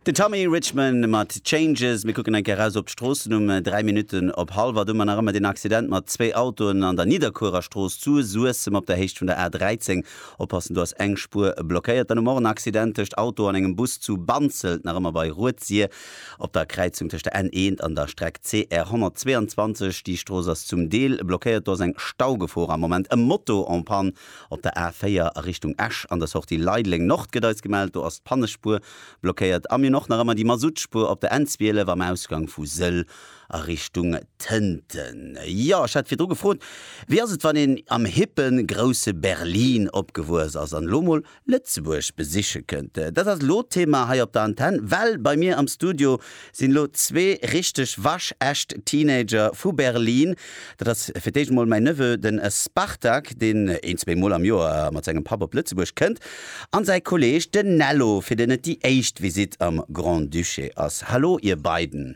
Den Tommy Richman mat Changes. Mir kucken eng Kéier eraus op d'Stroossen um 3 Minutten op hallwer. Do mar nach ëmmer deen Accident mat zwéi Autoen an der Nidderkuererstrooss zu Suessem op der Héicht vun der A13. Oppassen, do ass eng Spuer blockéiert. Dann um Morgen Accident tëscht Auto an engem Bus zu Banzelt, nach ëmmer bei Rued-Sir op der Kräizung tëscht der N eent an der Streck CR 122. Déi Strooss ass zum Deel blockéiert, do ass eng Staugefor am Moment. E Moto en panne. Op der A 4 a Richtung Esch an der Sortie Leideleng Nord gëtt eis gemellt, do ass d'Pannespuer blockéiert. A mir hunn och nach ëmmer déi Masuttspuer op der N 12 am Ausgang vu Sëll a Richtung Tënten. Jo, ech hat virdru gefrot, wéi ass et wann een am hippen, grousse Berlin opgewuess ass an elo mol Lëtzebuerg besiche kënnt. Dat ass elo d'Thema hei op der Antenn, well bei mir am Studio sinn elo zwee richteg waschecht Teenager vu Berlin. Dat ass fir d'éischt emol mäin Neveu, den Spartak, deen een, zwee Mol am Joer mat sengem Papp op Lëtzebuerg kënnt, an säi Kolleeg, den Nello, fir deen et déi éischt Visitt am Grand-Duché ass. Hallo, Ier beiden.